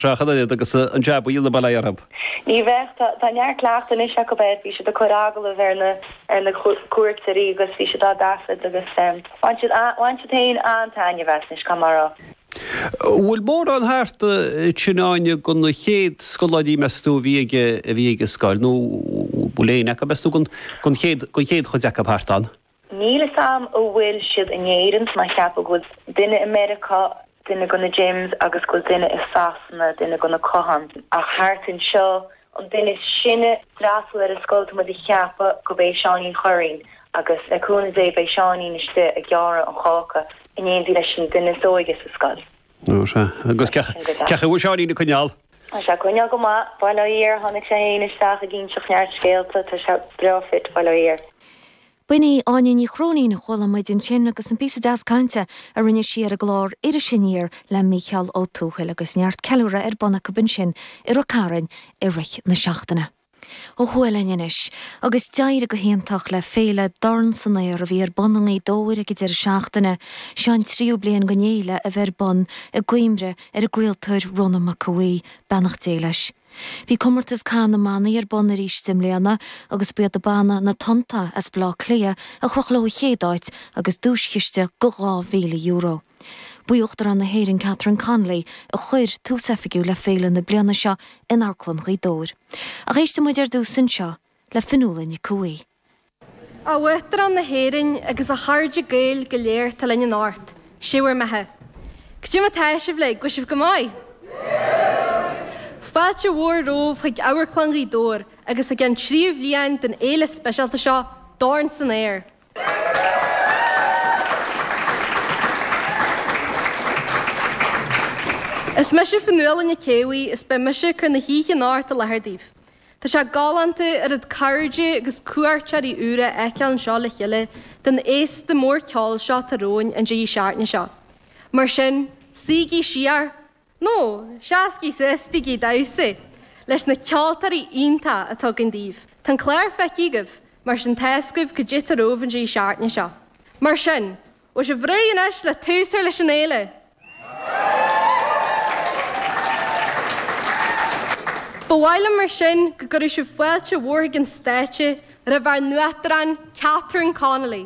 Seachain an iad agus an jab a dhéanamh abhaile orthu. Ní bheadh. Tá neart cleachtaidh anois acu air. Bhí siad ag cur agallamh ar na cuairteoirí agus bhí siad á dtaifead agus bhain siad, bhain siad féin an-taitneamh as, caithfidh mé a rá. An bhfuil mórán thart ansin, Áine, de na chéad scoláirí, meas tú, a bhí ag, a bhí ag an scoil, nó an bhfuil éinne acu, meas tú, den chéad, den chéad chuid acu thart ann? Níl fhios a'm a' bhfuil siad in Éirinn, tá mé a' cheapadh go bhfuil duine i Meiriceá, duine go na James agus go bhfuil duine i Sasana, duine go na Catháin. Ach thart anseo, an duine is sine a d'fhreastail ar an scoil tá muid a' cheapadh gurb é Seáinín Churraoin agus le cúnamh Dé beidh Seáinín istigh ag gearradh an cháca in éindí leis an duine is óige sa scoil. Ó, sea. Agus sin go deas. Agus cén chaoi a bhfuil Seáinín ag coinneáil? Tá sé ag coinneáil go maith, bail ó Dhia air, tháinig sé féin isteach ag inseacht neart scéalta, tá sé breá fit, bail ó Dhia air. B'in í Áine Ní Chróinín a chuala muid ansin agus an píosa deas cainte a rinne sí ar an gclár Iris Aniar le Mícheál Ó Tuathail agus neart ceiliúradh ar bun acu ansin i Ráth Chairn i rith na seachtaine. Ó thuaidh linn anois, agus d'éirigh go hiontach le féile Dorn san Aer a bhí ar bun i nGaoth Dobhair ag an deireadh seachtaine, seo an tríú bliain den fhéile a bheith ar bun i gcuimhne ar an gcraoltóir Rónán Mac Aodha Bhuí, beannacht Dé leis. Bhí comórtas Cath na mBannaí ar bun arís i mbliana agus ba iad an banna Na Tonnta as Baile Átha Cliath a chroch leo an chéad áit agus duaischiste go €2,000. Ba í Uachtarán na hÉireann Catherine Connolly a chuir tús oifigiúil le féile na bliana seo in Amharclann Ghaoth Dobhair. Ach éisteadh muid ar dtús anseo le Fionnuala Nic Aodha Bhuí. A Uachtarán na hÉireann agus a chairde Gaeil go léir atá linn anocht, Sé bhur mbeatha. Caidé mar atá sibh uilig, an bhfuil sibh go maith? Fáilte mhór romhaibh chuig Amharclann Ghaoth Dobhair agus chuig an tríú bhliain den fhéile speisialta seo, Dorn san Aer! Is mise Fionnuala Nic Aodha Bhuí is beidh mise ag cur na hoíche anocht i láthair daoibh. Tá sé galánta oiread cairde agus cuairteoirí úr a fheiceáil anseo le chéile den fhéasta mór ceoil seo atá romhainn an deireadh seachtaine seo. Mar sin, suígí siar! Nó seasaígí suas is bígí ag damhsa leis na ceoltóirí iontacha atá againn daoibh. Tá an clár feicthe agaibh mar sin tá's agaibh caidé atá romhaibh an deireadh seachtaine seo. Mar sin, an bhfuil sibh réidh anois le tús a chur leis an fhéile? Ba mhaith liom mar sin go gcuirfeadh sibh fáilte mhór chuig an stáitse roimh ár nUachtarán Catherine Connolly.